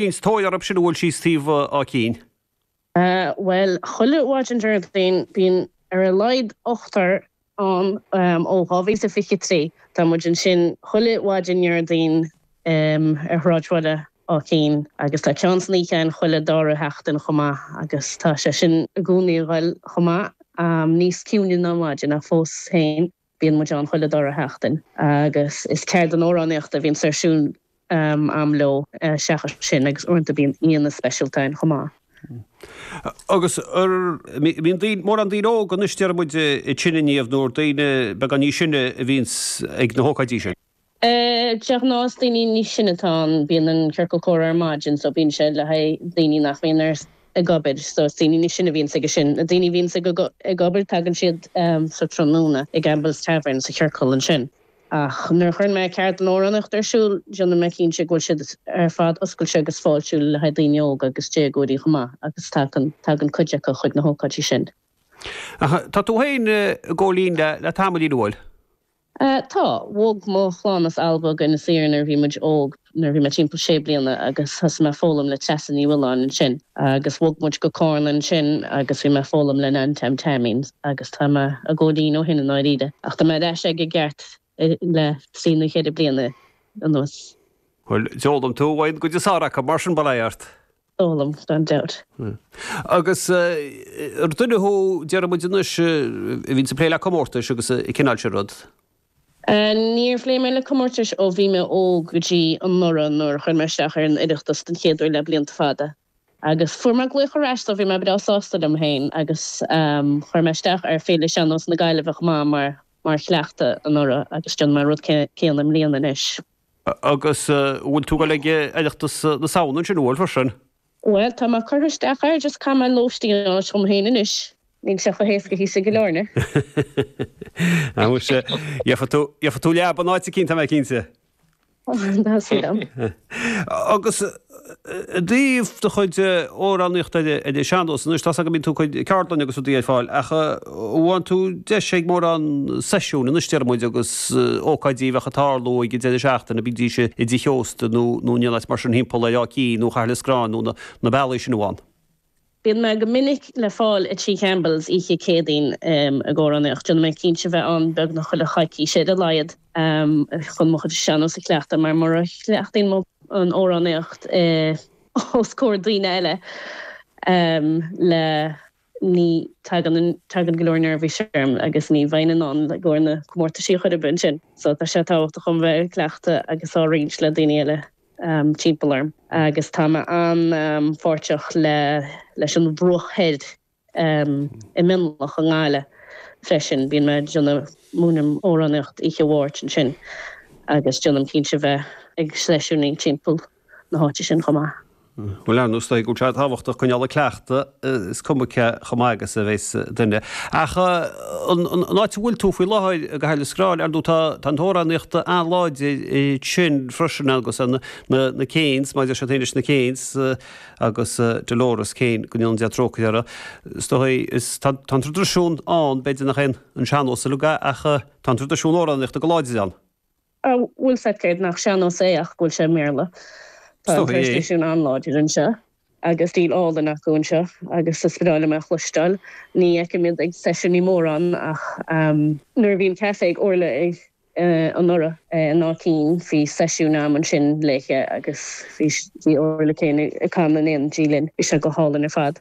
Is tóir orthu sin an bhfuil thíos taobh Áth Cinn. Bhuel, chuile mhaidin Déardaoin bíonn ar a laghad ochtar ann ó 2023. Tá muid ansin chuile mhaidin Dhéardaoin ar shráidbhaile Áth Cinn agus tá ceann san oíche ann chuile dara sheachtain chomh maith agus tá sé sin i gcónaí a dhul chomh maith, níos ciúine ná an mhaidin ach fós féin. Bíonn muid ann chuile dara sheachtain agus is ceardlann amhránaíochta a bhíonns ar siúl a'm leo seachas sin agus uaireanta bíonn aíonna speisialta ann chomh maith. Agus bíonn mórán daoine óga anois déarfaidh muid ag seinm inniu nó daoine beagáinín níos sine a bhíonns ag na hócáidí sin. De ghnáth is daoine níos sine atá ann, bíonn an ciorcal comhrá ar maidin so bíonn sé le haghaidh daoine nach mbíonn ar ag obair so is daoine níos sine a bhíonns aige sin. Na daoine a bhíonns ag ag obair tagann siad sa tráthnóna i gCampbell's Tavern sa chiorcal ansin. Ach nuair a chuireann mé ceardlann amhránaíochta ar siúl déanann mé cinnte go bhfuil siad ar fad oscailte agus fáiltiúil le haghaidh daoine óga agus déagóirí chomh maith agus tagann tagann cuid acu chuig na hócáidí sin. Ach tá tú féin ag gabháil fhoinn le le tamaillín, an bhfuil? Tá. Bhog mo chlann as Alba go Inis Oírr nuair a bhí muid óg, nuair a bhí mé timpeall sé bliana agus thosaigh mé ag foghlaim le Treasa Ní Mhiolláin ansin. Agus bhog muid go Carna ansin agus bhí mé ag foghlaim le Nan Tom Taimín agus tá mé ag gabháil fhoinn ó shin i ndáiríre. Ach tá mé ar ais aige i gceart le trí nó cheithre bliana anuas. Bhuel, d'fhoghlaim tú uaidh an gcuid is fearr acu, mar sin, bail ort! d'fhoghlaim, gan dabht. Agus ar duine thú, déarfaidh muid anois, a bhíonns ag plé le comórtais agus an cineál sin rud? Níor phléigh mé le comórtais ó bhí mé óg go dtí anuraidh nuair a chuir mé isteach ar an Oireachtas den chéad uair le blianta fada. Agus fuair mé glaoch ar ais so bhí mé breá sásta liom féin agus chuir mé isteach ar Féile Shean-Nós na Gaillimhe chomh maith mar chleachtadh anuraidh agus déanfaidh mé an rud céanna i mbliana anois. Agus bhfuil tú ag dul ag Oireachtas na Samhna ansin an bhfuil freisin? Bhuel, tá mé curtha isteach air, just caithfidh mé lóistín a fháil dhom féin anois. Níl sé chomh héascaí thíos i gCill Airne. Á muise, gheobhaidh tú leaba in áit eicínt, tá mé cinnte. Tá súil agam. Agus I dtaobh do chuid amhránaíochta ar Sean-nós, anois tá 's agam go mbíonn tú ag cur ceardlanna agus rudaí ar fáil ach an bhfaigheann tú deis ag mórán seisiúin, anois déarfaidh muid, agus ócáidí a bheadh ag tarlú ag an deireadh seachtaine, bídís i dtithe ósta nó in aon áit mar sin thimpeall ar Áth Cinn nó Chathair Loistreáin nó na bealaí sin an bhfaigheann? Bíonn mé go minic le fáil i Tigh Campbell's oíche Céadaoin ag amhránaíocht. Déanann mé cinnte bheith ann beagnach chuile choicís ar a laghad chun mo chuid sean-nós a chleachtadh mar mura chleachtaíonn mé an amhránaíocht os comhair daoine eile le ní tagann go leor neirbhís orm agus ní bheinn in ann i gcomhair na comórtaisí a chur ar bun sin so tá sé tábhachtach dom bheith ag cleachtadh agus á roinnt le daoine eile. timpeall orm agus tá mé an-pháirteach leis an mBruach Thoir i Mionloch i nGaillimh freisin. Bíonn mé ag déanamh, múinim amhránaíocht oíche Mháirt ansin agus déanaim cinnte bheith ag seisiúiní timpeall na háite sin chomh maith. Bhuel, is dóigh go bhfuil sé tábhachtach coinneáil ag cleachtadh. is cuma cé chomh maith agus a bheas duine. Ach an áit a bhfuil tú faoi láthair, Cathair Loistreáin, ar ndóigh tá an amhránaíocht an-láidir ansin freisin agus na Keanes, maidir leis sin féin leis na Keanes agus Dolores Keane, go ndéana Dia trócaire uirthi, is dóigh, is tá an tradisiún ann, b'fhéidir nach é an sean-nós é ach tá an tradisiún amhránaíochta an-láidir ann. a bhfuil sé, cé nach sean-nós é ach go bhfuil sé i mBéarla. Tá an traidisiún an-láidir anseo agus stíl álainn acu anseo agus is breá liom é a chloisteáil. Ní fheicim iad ag seisiúiní mórán ach nuair a bhí an caifé ag Orla anuraidh in Áth Cinn bhí seisiún a'm ansin léithe agus bhí Orla Keane ag canadh in éindí linn. Bhí sé go hálainn ar fad.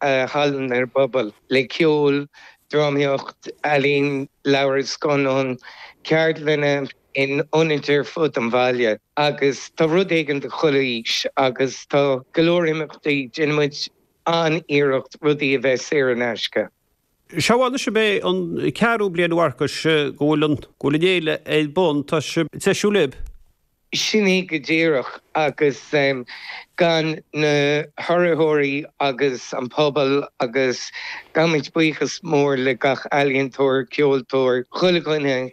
a thabhairt don bpobal, le ceol, drámaíocht, ealaín, leabhair, scannáin, ceardlanna in ionaid ar fud an bhaile agus tá rud éigin do chuile aois agus tá go leor imeachtaí. Déanann muid an-iarracht rudaí a bheith saor in aisce. Is dóigh anois gurb é an ceathrú bliain a Mharcais go bhfuil an fhéile ar bun. Tá sibh ag treisiú libh. Sin é go díreach, agus gan na hurraitheoirí agus an pobal agus gabhaimid buíochas mór le gach ealaíontóir, ceoltóir, chuile dhuine a